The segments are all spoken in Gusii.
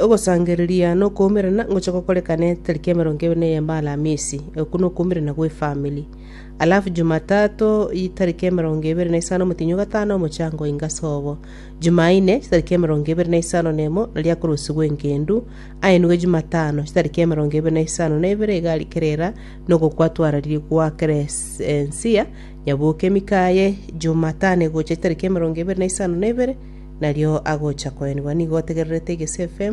Ogosangereria na okoumerana ngochia gokorekana etariki emerongo ebere na eyemo Alamisi, okwo na okoumerana gwe efamiri. Alafu Jumatato etariki emerongo ebere na isano omotienyi o gatano omochango oinge ase obo. Jumaine chitariki emerongo ebere na isano na emo naria akorusigwa engendu, aenigwe Jumatano chitariki emerongo ebere na isano na ibere iga rikerera na ogokwatwararia gwa Kresensia, nyabuoke emika yaye Jumatano egocha chitariki emerongo ebere na isano na ibere, Nario agocha koenigwa nigo otegererete egesefe,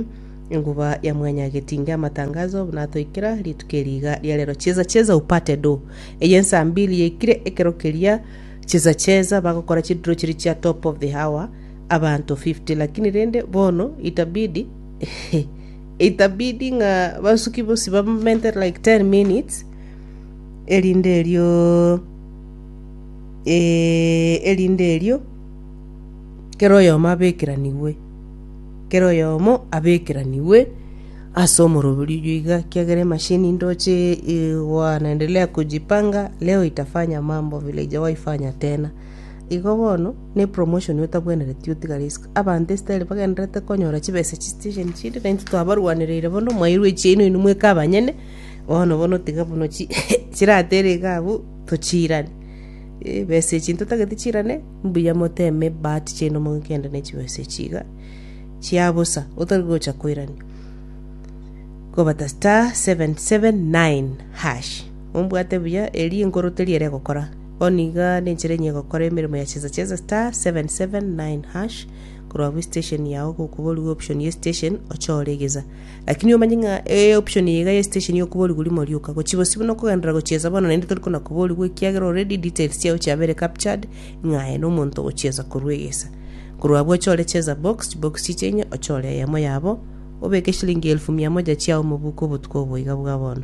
enguba ya mwanyagetinga amatangazo buna atoikera, rituko eri iga ria rero cheza cheza upate do. Eye ensaa mbili yaikire ekero keria cheza cheza bagokora chidiro chiria chia top of the hour abanto 50 lakini rende bono itabidi itabidi ng'a basuki bosi bamente like 10 minutes erinde erio eh, erinde erio kera oyomo abekeranigwe, kera oyomo abekeranigwe ase omoroberio oyio iga, ekiagera emashini ndoche eh, wanaendelea kujipanga, leo itafanya mambo vile ijawahi fanya tena. Igo bono, ne promotion otabwenereti otiga risk. Abanto esitaeli bagendererete konyora chibesa chi station chinde, naintwe twabarwanereire bono, mwairwa echiaino inwe mweka abanyene, bono bono tiga buna chi chiratere iga abwo, tochiirane. Eeh besa echi ntotagete chiirane. Mbuya moteme ebahati chiaino mogende ne chibesa echi iga chia bosa otari gocha koirania. Kobata *779#. Ombwate buya eri enkoro teri ere egokora. Bono iga nenchera enye egokora emeremo ya chesa chesa *779#. Korwa abwo estation yao gokuborigwe option ye station ochore egesa. Lakini omanye ng'a e option eye iga ye station ya okoborigwa rimo rioka, gochia bosio buna okogenderera gochiesa bono naende tori kona koborigwa ekiagera already details chiao chiabeire captured ng'a aye nomonto ogochiesa korwa egesa. Korwa abwo ochore cheza box, chibox chiche inye ochore eyemo yabo obeke shilingi elfu mia moja chiao mobuko obotuko obo iga bwa bono.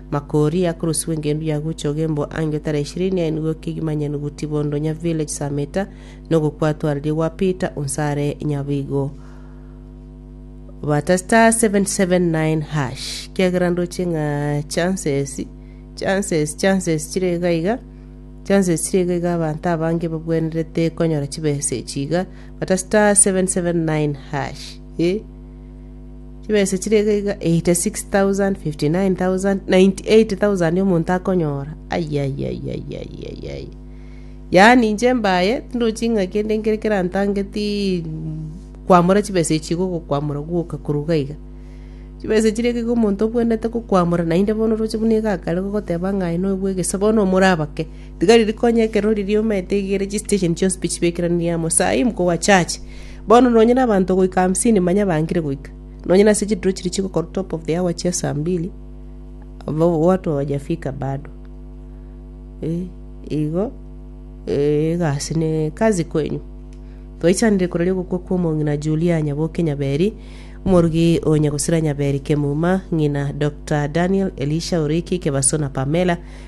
Makori akorosiwa engendu ya gocha ogembwa ange otare ishirini aye nigo kegima nyenuguti bondo nya village saa meta nogo kwatwarerie gwa Peter onse are nyaboigo bata star 779 hash kiagera ndoche ng'a chances chances chances chire iga iga chances chire iga iga abanto abange babwenerete konyora chibesa echi iga bata star 779 hash eh Chibesa chire iga iga, 86,059,098,000 omonto akonyora, ayayayayayayay. Yaani inche mbaye, tindochi ng'a kende nkere kerantangetii kwamora chibesa echi iga ogokwamora gwoka korwa iga iga. Chibesa chire iga iga omonto obwenerete gokwamora, naende bono oroche buna iga akare gogoteba ng'a aye noyo bwa egesaku, bono omorabake. Tiga riri konya ekero riria omanyete igere chisitesheni chionsi pi chibekeranirie amo, saa eye mokogwa church. Bono nonye nabanto goika hamsini manya bangire goika. Nonye nase chidiro chiria chigokora top of the hour chia saa mbili, abao watu hawajafika bado. Eh, igo, eh, egasi ne kazi kwenyu. Twaichanire korwa riogokwa kwa omong'ina Julia Nyaboke Nyaberi, omorugi o Nyagusira Nyaberi Kemuma, ng'ina Doctor Daniel Elisha Oriki Kebaso na Pamela,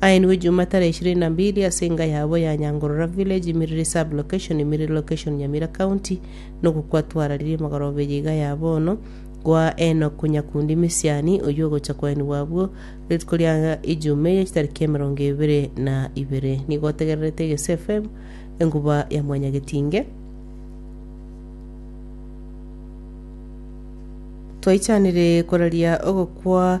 Aenigwe Juma tarehe ishirini na mbili ase enga yabo ya Nyangorora village Imiriri sub location Imiriri location Nyamira county nogo kwatwararirie emegorobe eye iga ya bono Kwa Enock Nyakundi Misiani oyio ogocha kwaenigwa abwo rituko ria Ijuma eye chitariki emerongo ebere na ibere nigo otegererete Egesu FM enkuba ya Mwanyagetinge Twaichanire koraria ogokwa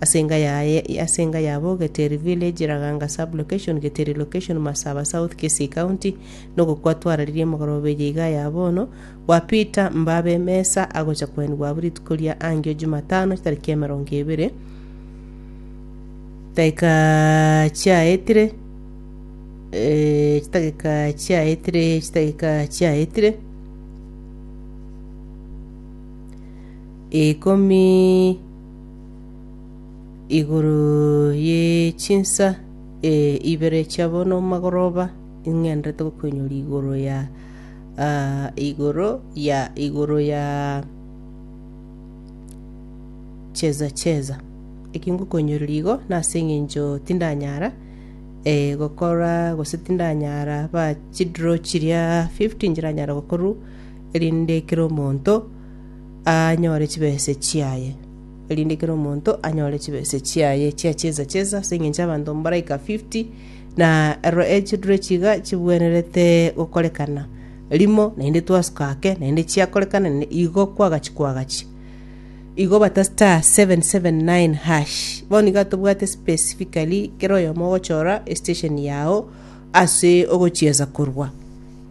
Ase enga yaye ase enga yabo Geteri village, Raganga sub location, Geteri location, Masaba south, Kisii county, nogokwa twararerie emogoroba eye iga ya bono, gwa Peter Mbabe Mesa agocha koenigwa abwo rituko ria angio Jumatano tariki emerongo ebere daika chiaetire eh, chidagika chiaetire chidagika chiaetire ikomi igoro ye chinsa eh, ibere chiabo nomagoroba ing'enderete gokoinyora igoro ya ah, igoro ya igoro ya cheza cheza eki ngokoinyoreria igo nase eng'encho tindanyara eh, gokora gose tindanyara ba chidraw chiria 50 nchiranyara gokorwa erinde kera omonto anyore chibese chiaye, erinde kera omonto anyore chibese chiaye chia chiesa chiesa, ase engencho abanto mbaraika fifty, na ero e chidure chiga chibwenerete gokorekana rimo, naende twasuka ake, naende chiakorekana, naende igo kwagachi kwagachi. Igo bata star seven seven nine hash, bono nigo atobwate specifically kera oyomo ogochora estation yago ase ogochiesa korwa.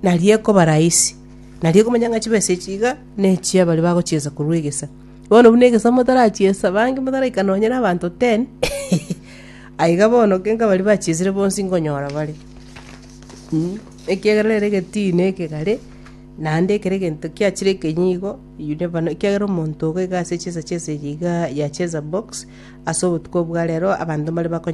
Nario ekoba rahisi, nario okomanya ng'a chibesa echi iga ne chia baria bagochiesa korwa egesa. Bono buna egesa motarachiesa, abange motaraika nonye nabaanto ten, aiga bono kenga baria bachiesire bonsi nkonyora bare, mm. Ekiagera nere egetii na ekegare, naende ekero egento kiachire ekenyi igo, you never know, ekiagera omonto iga ase chiesa chiesa echi igaa yachiesa box, ase obotuko bwa rero abanto mbare bakonye.